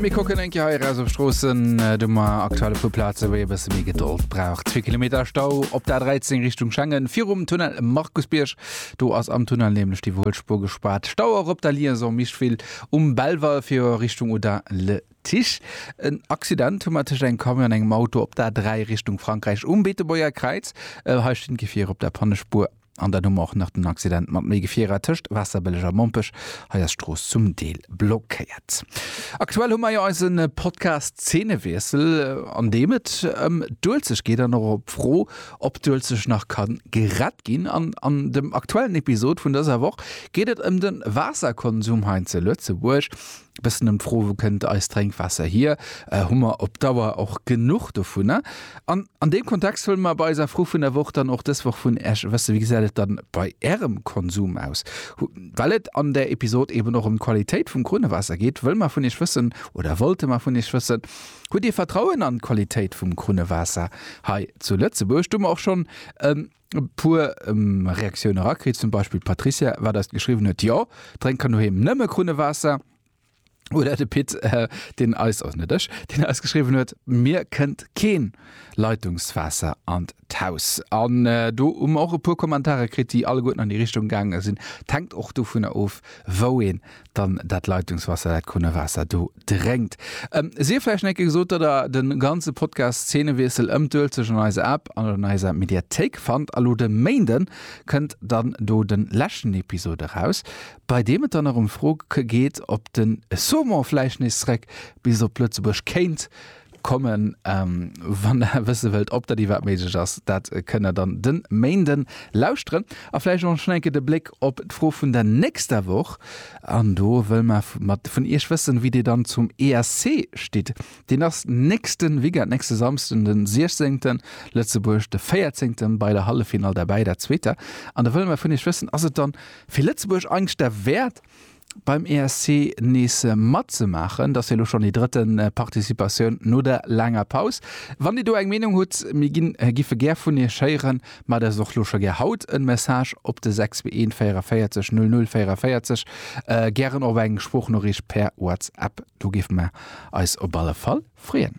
Mir kocken enke hei raus op Stroossen äh, du ma aktuelle vu Plaze wéi e bësse méi Gedold braucht. 2 Kilometer Stau op der 13 Richtung Schengen virum Tunnel Markusbierg. Do ass am Tunnel nämlech déi Wuelspur gespaart. Stau och op der Liaison Mischwil um Belval fir Richtung Oudin le Tiche. En Accident hu mat tëscht engem Camion an engem Auto op der 3 Richtung Frankräich um Beetebuerger Kräiz. Äh, hei stinn d'Gefier op der Pannespur. An dann hu mer och nach den Accident mat méi Gefierer tëscht Waasserbëlleg a Mompech. Hei ass d'Strooss zum Deel blockéiert. Aktuell hu mer jo eise Podcast Zeenewiessel, an deem et ëm d'Uelzecht geet an och op d'Fro, ob d'Uelzecht nach ka gerett ginn. An an dem aktuellen Episod vun dëser Woch geet et ëm de Waasserkonsum hei zu Lëtzebuerg. e bëssen ëm d'Fro, wou kënnt eist Drénkwaasser hier? Hu mer op Dauer och genuch dovunner? An an deem Kontext huele mer bei eiser Fro vun der Woch dann och dës Woch vun Iech e bësse, Wéi gesäit et dann bei Ärem Konsum aus? Well et an der Episod eben och ëm d'Qualitéit vum Krunnewaasser geet, wëlle mer vun Iech wëssen, oder wollte mer vun Iech wëssen, Hutt Dir Vertrauen an d'Qualitéit vum Krunnewaasser hei zu Lëtzebuerg? Do hu mer och schonn e E puer Reaktioun erakritt, zum Beispill d'Patricia, wat eis geschriwwen huet, Jo, drénk kann doheem nëmme Krunnewaasser. Oder de Pit, deen eis, also net ech, deen eis geschriwwen huet, Mir kënnt keen Leitungswaasser an d'Haus. An do hu mer och e puer Kommentare kritt, déi alleguerten an déi Richtung gaange sinn. T'hänkt och dovunner of, wou een dann dat Leitungswasser, dat Krunnewaasser do drénkt. Ähm, sief vläicht en Ecke gesot, datt der de ganze Podcast Szenewiessel ëm d'Uelzecht an eiser App an an eiser Mediathéik fannt. A lo de Méinden kënnt dann do de leschten Episod eraus, bei deem et dann nach ëm d'Fro geet, ob den Saumon vläicht nees zréck bis op Lëtzebuerg kéint, Kommen. Wann der wësse wëllt ob dat iwwerhaapt méiglech ass, dat kënnt der dann de Méinde lauschteren. A vläicht och schnell eng Kéier de Bléck op d'Fro vun der nächster Woch. An do wëlle mer mat vun Iech wëssen, wéi Dir dann zum ESC stitt. Deen ass nächste Weekend, nächste Samsden de 16. Lëtzebuerg de 14. bei der Halleffinall derbäi, dat zweeter. An da wëlle mer vun Iech wëssen, Ass et dann fir Lëtzebuerg eigentlech derwäert, beim ESC nees matzemaachen. Dass jo elo schonn déi drëtte Participatioun no der laanger Paus. Wann Dir do eng Meenung hutt, mir ginn, giffe gär vun Iech héieren, maacht eis och lo scho gär haut en Message op de 641 44 00 44, gären och eng Sproochnoriicht per WhatsApp. Do géife mer eis op alle Fall freeën.